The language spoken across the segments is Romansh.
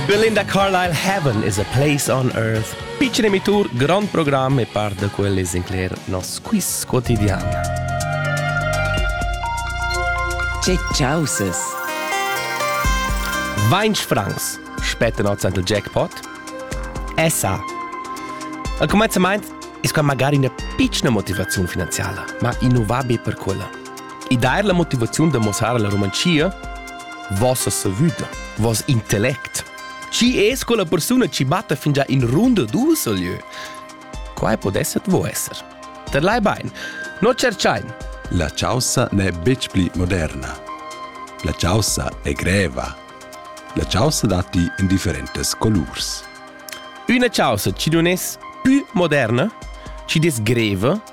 Belinda Carlisle Heaven is a place on earth pitschen emitur, grand programm e par da quel es incler nos quiz quotidian. Che causes? Vainch francs spetta nots ant il jackpot? Essa. Al comenzament es qua magari üna pitschna motivaziun finanziala, ma innovabile per quella. e dar la motivaziun da mossar la Romanzia? Vossa savüda, voss intellect. Chi es quella persuna chi batta fingià in runda dus al lieu? Quai podesset vo esser. Ter lai bain, no cerchain. La chaussa n'è betg pli moderna. La chaussa è greva. La chaussa datti en differentes colurs. Üna chaussa chi nun es pü moderna, chi des greva,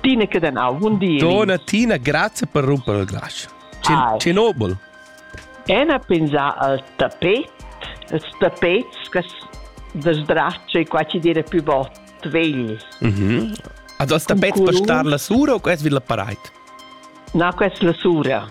Tina che den au un di. Dona Tina, grazie per rumpere il glas. Cenobel. Ena pensa al tapet, als tapets che sdraccia e qua ci dire più bot vegl. Mhm. Also als tapet per star la sura o quest vil la pareit? No, quest la sura.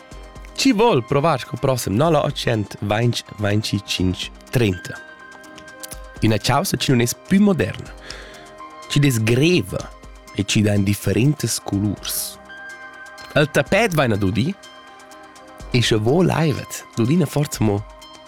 Chi vol provar sco prossem no la 820 25 30? Üna chausa chi nun es pü moderna, chi desgreva e chi dà in differentes culurs. El tapet vaina dudi e sche vo laivet dudina forza mo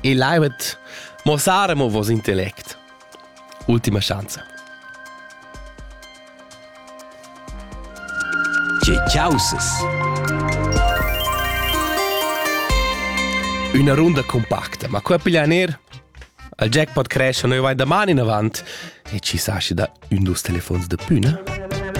E levet mossare mo vos intellect. Ultima chance. Tge causes? Una runda compacta, ma qua piglian er al jackpot crash noi vai da man in avant e ci sa da un dus telefons de püna?